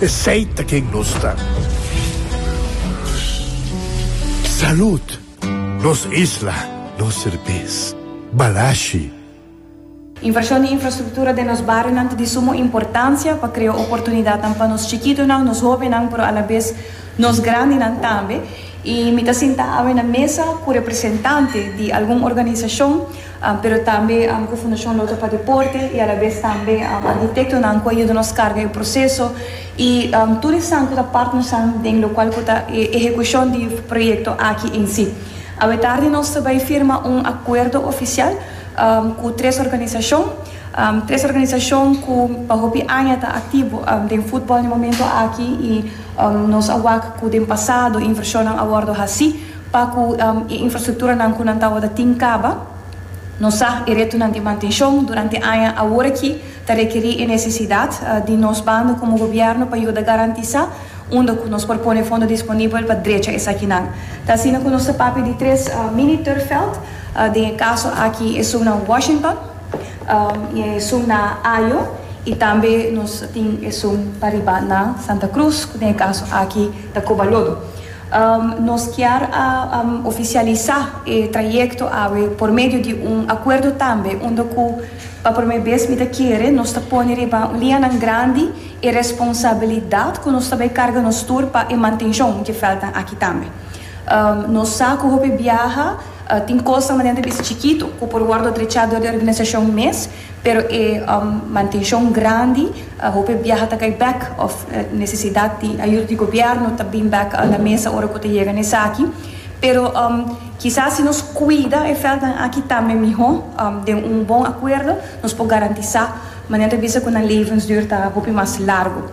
Esey ta ken nos ta. Salud! Nos isla, nos serbes. Balashi. Invershon di infrastruktura den nos barionan ta di sumo importansia pa krea oportunidatnan pa nos chikitonan, nos hobennan, pero alabes nos grandinan tambe. I mi ta sinta awe na mesa ku representante di algun organisashon. pero tambe ku Fundacion Lotto pa Deporte y alabes tambe arhitectonan ku a yuda nos carga e proceso y tur esnan ku ta partnersnan den locual ku ta e ehecucion di proyecto aki en si. Awe tardi nos ta bay firma un acuerdo oficial ku tres organisacion, tres organisacion ku pa hopi aña ta activo den futbol den momento aki y nos a wak ku den pasado inversionnan a wordo haci. Pa ku e infrastrukturanan ku nan tabata tin kaba, nos sa e retonan di mantenshon durante aña aworakí ta rekerí e nesesidat di nos banda komo gobièrnu pa yuda garantisá unda ku nos por pone fondo disponibel pa drecha esakinan. Ta asina ku nos ta papia di tres mini turfveld, den e kaso aki esun na Washington, i esun na Ajo i tambe nos tin esun pa riba na Santa Cruz, ku den e kaso aki ta Cobalodo. Nos kier a oficialisa e trayecto awe por medio di un acuerdo tambe unda cu pa prome bes mi ta kere nos ta pone riba lianan grandi e responsabilidad cu nos ta bay carga nos tur pa e mantencion dje veldnan aki tambe. Nos sa cu hopi biaha tin cosnan manera ta bisa chikito cu por wordo drecha dor di organisacion mes, Pero e mantenshon grandi, hopi biaha ta kai bek of nesesidat di ayuda di gobièrnu ta bin bek na mesa ora ku ta yega na esaki. Pero kisas si nos kuida e vèltnan aki tambe mihó den un bon akuerdo nos por garantisá manera ta bisa ku nan levensduur ta hopi mas largu.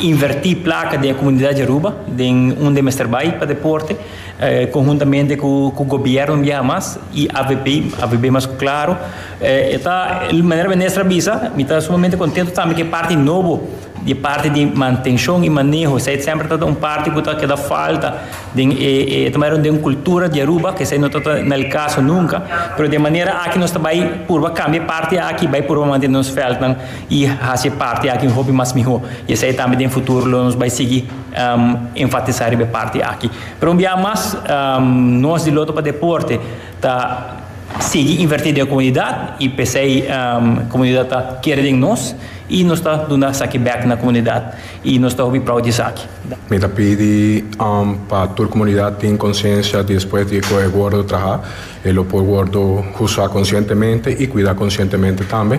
Invertí plaka den e komunidat di Aruba, den unda e mester bai pa deporte, konhuntamente ku gobièrnu di Hamas i avp, avp mas ku Claro. E ta, manera Minister a bisa, mi ta sumamente kontentu tambe ku e parti nobo, di e parti di mantenshon i maneho, esei semper ta un parti ku ta keda falta den e, e ta manera den kultura di Aruba, ku esei no tabata na el kaso nunka. Pero den e manera aki nos ta bai purba kambia e parti aki, bai purba mantene nos vèldnan. i hasi e parti aki hopi mas mihó, i esei tambe den futuro lo nos bai sigui enfatisá riba e parti aki. Pero un biaha mas, nos di Lotto pa Deporte ta sigui invertí den e komunidat i p'esei komunidat ta kere den nos i nos ta duna esaki bèk na komunidat i nos ta hopi prou di esaki. Mi ta pidi pa tur komunidat tin konsiensia di despues di ku e wordo trahá e lo por wordo usá konsientemente i kuidá konsientemente tambe.